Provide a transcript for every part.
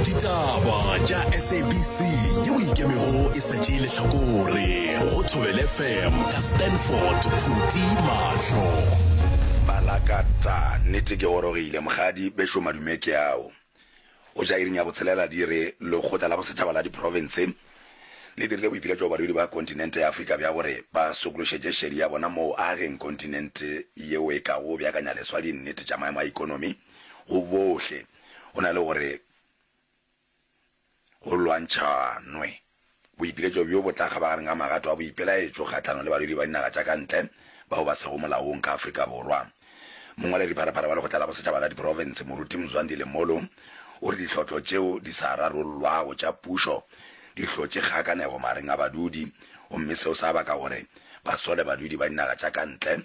ditaba tša sabc yeo ikemego e sa tšee lehlakore go thobele fm ka stanford phuti mahlo balakata nnete ke gorogile mokgadi bešo madume ke ao o ja iring ya botshelela di re lekgotla la bosetšhaba la diprofense le dirile boipiletšo go balwedi ba kontinente ya afrika bja gore ba sokološetše šedi ya bona moo ageng kontinente yeo e kago beakanya leswa dinnete tša maemo a ikonomi go bohle go na le gore go lwantšhanwe boipiletšo bjo bo tla kgabagareng ga magato a boipelaetšo kgahlanong le barwedi ba dinaga tša ka ntle bao ba sego molaong ka Afrika Borwa. Mongwaledipharapara wa Lekgotla la Bosetšhaba la Diprofense, Moruti Mzwandile Molo, o re ditlhohlo tšeo di sa rarollwago tša pušo di hlotše kgakanego mareng a badudi gomme seo sa baka gore ba sole badudi ba dinaga tša ka ntle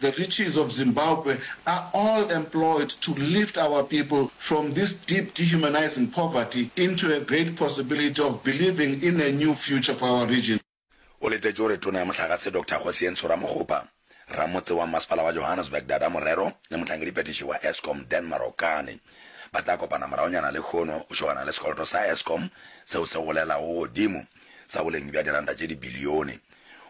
The riches of Zimbabwe are all employed to lift our people from this deep dehumanizing poverty into a great possibility of believing in a new future for our region. O letetše gore Tona ya Mohlagase Doctor Kgosientsho Ramokgopa, Ramotse wa Mmasepala wa Johannesburg Dada Morero le Mohlangediphetiši wa Eskom Dan Marokane ba tla kopana moragonyana lekhono go šogana le sekoloto sa Eskom seo se golelago godimo sa boleng bja diranta tše dibilione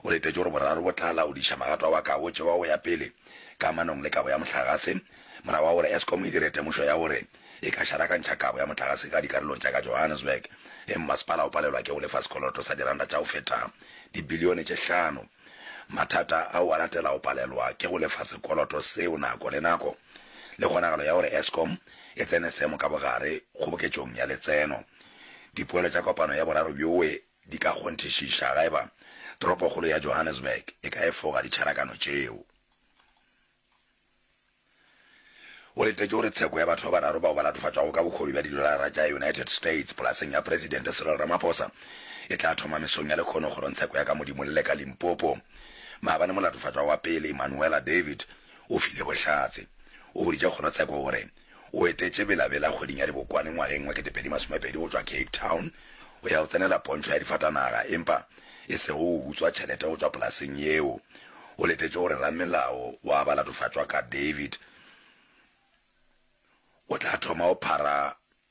O letetše gore boraro bo tla laodiša magato a wakago tšeo a go ya pele ka manong le kabo ya mohlagase, morago ga gore Eskom e dire temošo ya gore e ka šarakantšha kabo ya mohlagase ka dikarolong tša ka Johannesburg ge mmasepala o palelwa ke go lefa sekoloto sa diranta tša go feta dibilione tše hlano. Mathata ao a latela go palelwa ke go lefa sekoloto seo nako le nako le kgonagalo ya gore Eskom e tsene seemo ka bogare kgoboketšong ya letseno. Dipoelo tša kopano ya boraro bjoe di ka kgonthišiša ga e ba toropokgolo ya Johannesburg e ka efoga ditšharakano tšeo. O letetše gore tsheko ya batho ba bararo bao ba latofatšwago ka bokgobi bja didolara tša United States polaseng ya Presidente Cyril Ramaphosa e tla thoma mesong ya lekgono kgorongtsheko ya ka Modimolle ka Limpopo maabane. Molatofatšwa wa pele Manuela David o file bohlatse. O boditše kgorotsheko gore. O etetše Bela Bela kgweding ya Dibokwane ngwageng wa kete pedi masome pedi go tšwa Cape Town go ya go tsenela pontšho ya difatanaga empa e sego go utswa tšhelete go tšwa polaseng yeo. O letetše gore ramelao wa ba latofatšwa ka David o tla thoma go phara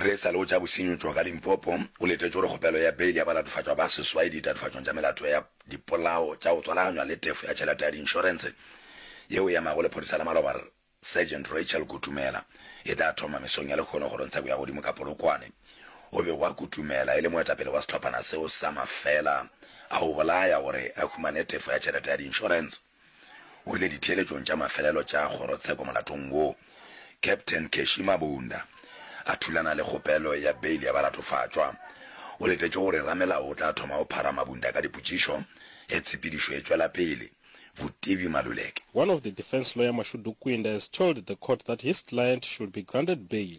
Ge e sa le o tša bosenyi tšwa ka Limpopo, o letetše gore kgopelo ya beile ya balatofatšwa ba seswai ditatofatšong tša melato ya dipolao tša go tswalaganywa le tefo ya tšhelete ya diinšorense yeo e emago lephodisa la maloba Rr. Sergeant Rachel Kutumela e tla thoma mesong ya lehono kgorong tsheko ya godimo ka Polokwane. O bego a kutumela e le moetapele wa sehlophana seo sa mafela a go bolaya gore a humane tefo ya tšhelete ya diinšorense. o rile ditheeletšong tša mafelelo tša kgorotsheko molatong wo, Captain Keshi Mabunda a thulana le kgopelo ya beile ya balatofatšwa. O letetše gore ramelao o tla thoma go phara Mabunda ka dipotšišo ge tshepedišo e tšwela pele. Vutivi Maluleke. One of the defence lawyer Mashudu Kwinda has told the court that his client should be granted bail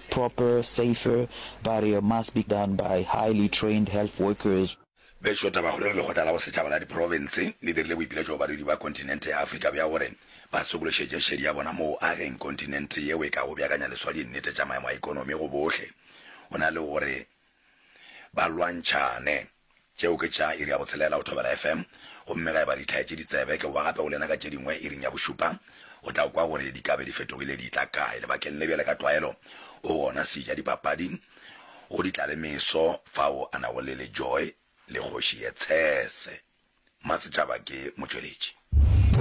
proper, safer, barrier must be done by highly trained health workers. Bešo Tabakgolo re Lekgotla la Bosetšhaba la Diprofense le dirile boipiletšo go barwedi ba kontinente ya Afrika bja gore ba sokološetše šedi ya bona moo ageng kontinente yeo e ka go beakanya leswa dinnete tša maemo a ekonomi go bohle go na le gore ba lwantšhane Tšeo ke tša iri ya botshelela o thobela FM, gomme ga e ba di thaetše ditsebe, ke bowa gape go lena ka tše dingwe iring ya bošupa. O tla kwa gore di ka be di fetogile di tla kae. Lebakeng le bjale ka tlwaelo o gona seja dipapadi go di tla le meso fao a nago le Lejoe le kgoši ye tshese. Masetšaba ke motšweletši.